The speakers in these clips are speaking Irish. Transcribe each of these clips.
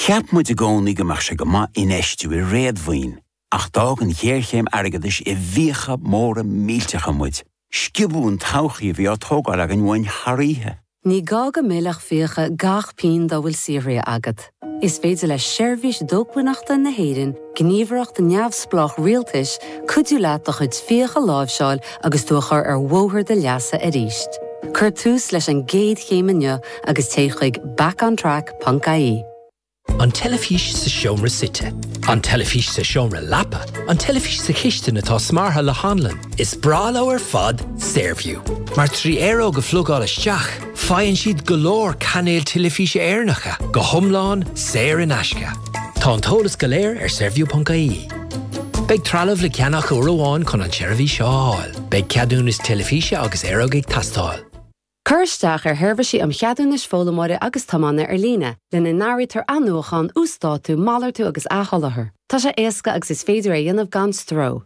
Cheap muid i gcónaí go mbeadh sé go maith infheistiú i réadmhaoin, ach d'fhág an ghéarchéim airgeadais i bhfiacha móra millteacha muid, sciobadh an todhchaí a bhí á tógáil againn uainn thar oíche. Ní gá go millfeadh fiacha gach pingin dá bhfuil saothraithe agat. Is féidir le Seirbhís Dócmhainneachta na hÉireann gníomhaireacht neamhspleách rialtais, cuidiú leat do chuid fiach a láimhseáil agus tú a chur ar bhóthar do leasa arís. Cuir tús leis an gcéad chéim inniu agus téigh chuig backontrack.ie. An teilifís sa seomra suite. An teilifís sa seomra leapa. An teilifís sa chistin atá smeartha le hanlann. Is breá leo ar fad Saorview, mar trí aeróg a phlugáil isteach, Faigheann siad go leor cainéil teilifíse Éireannacha go hiomlán saor in aisce. Tá an t-eolas go léir ar saorview.ie. Beidh trealamh le ceannach uair amháin chun an tseirbhís seo a fháil. Beidh ceadúnas teilifíse agus aeróg ag teastáil. Cuir isteach ar Sheirbhísí um Cheadúnais Foghlaimeora agus Tiomána Ar Líne, lena n-áirítear athnuachán, uasdátú, malartú agus athsholáthar. Tá sé éasca agus is féidir é a dhéanamh gan stró.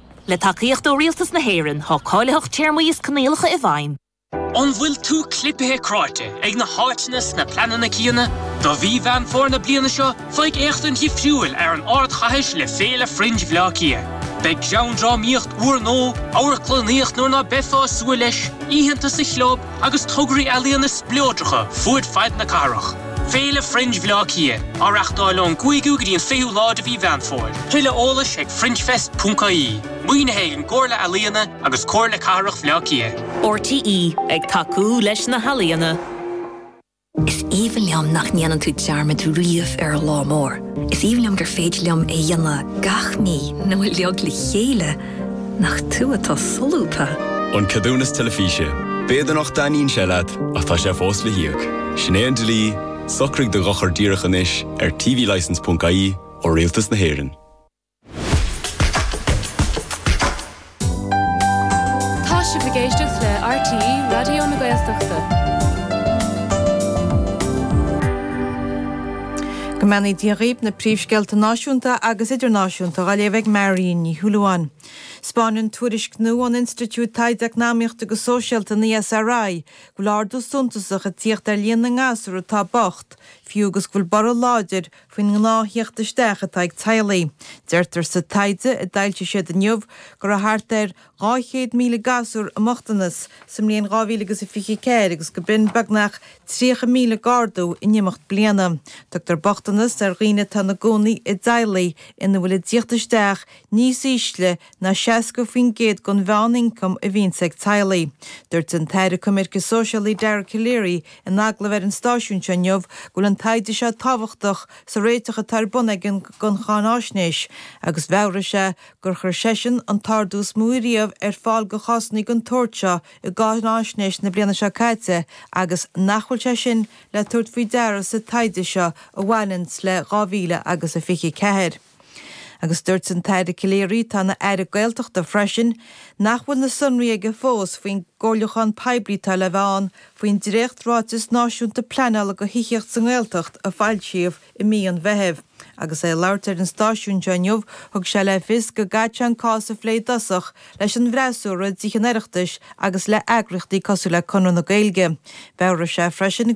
Le tacaíocht ó Rialtas na hÉireann, tá cáilitheacht téarmaí is coinníollacha i bhfeidhm. An bhfuil tú clipithe cráite ag na háiteanna is na pleananna céanna? Do mhí Mheán Fómhair na bliana seo, faigh éachtaint dhifriúil ar an ardchathair le Féile Fringe Bhleá Cliath. Beidh geandrámaíocht úrnua amharclannaíocht nuair ná beifeá ag súil leis, oícheanta sa Chlub, agus tograí ealaíne spleodracha fud fad na cathrach. Féile Fringe Bhleá Cliath á reachtáil ón gcúigiú go dtí an fichiú lá de mhí Mheán Fómhair. Tuilleadh eolais ag fringefest.ie, maoinithe ag an gComhairle Ealaíon agus Comhairle Cathrach Bhleá Cliath. RTÉ ag tacú leis na healaíona. Is aoibhinn liom nach ndéanann tú dearmad riamh ar an lá mór. Is aoibhinn liom gur féidir liom é a dhéanamh gach mí nó uiliog le chéile, nach tú atá solúbtha? An Ceadúnas Teilifíse. B'fhéidir nach dtaitníonn sé leat, ach tá sé fós le híoc. Sin é an dlí, socraigh do dhochar díreach anois ar tvlicence.ie ó Rialtas na hÉireann. Tá sibh ag éisteacht le RTÉ Raidió na Gaeltachta. Go mbeannaí Dia dhaoibh na príomhscéalta náisiúnta agus idirnáisiúnta á léamh ag Marion Ní Shúilleabháin. Spáineann tuairisc nua ón Institiúid Taighde Eacnamaíochta agus Sóisialta, an ESRI, go bhfuil ardú suntasach ag tíocht ar líon na ngasúr atá bocht, fiú agus go bhfuil borradh láidir faoin ngnáth-thíocht isteach atá ag teaghlaigh. Deirtear sa taighde a d'fhoilsigh siad inniu go raibh thart ar 200,000 gasúr i mbochtanas sa mbliain 2000 agus a 24 agus go b'in beagnach 30,000 d'ardú in imeacht bliana. Tugtar bochtanas ar dhaoine atá ina gcónaí i dteaghlaigh ina bhfuil a dtíocht isteach níos ísle ná 60% den mheán-ioncam a bhíonns ag teaghlaigh. Dúirt an tAire Coimirce Sóisialaí Dara Calleary in agallamh ar an stáisiún seo inniu go bhfuil an taighde seo tábhachtach sa réiteach atá ar bun acu don cháinaisnéis agus mheabhraigh sé gur chuir seisean an t-ardú is mó riamh ar fáil do chásanna den tsórt seo i gcáinaisnéis na bliana seo caite agus nach bhfuil sé sin le tabhairt faoi deara sa taighde seo a bhain le 2024. Agus dúirt an tAire Calleary, atá ina Aire Gaeltachta freisin, nach bhfuil na sonraí aige fós faoin gcomhairliúchán poiblí atá le bheith ann faoin dréacht-Ráiteas Náisiúnta Pleanála do Thithíocht sa nGaeltacht a foilsíodh i mí an Mheithimh. Agus é ag labhairt ar an stáisiún seo inniu, thug sé le fios go gcaithfidh sé an cás a phlé i dtosach leis an bhfreasúra i dTithe an Oireachtais agus le heagraíochtaí cosúil le Conradh na Gaeilge. Mheabhraigh sé freisin go bhfuil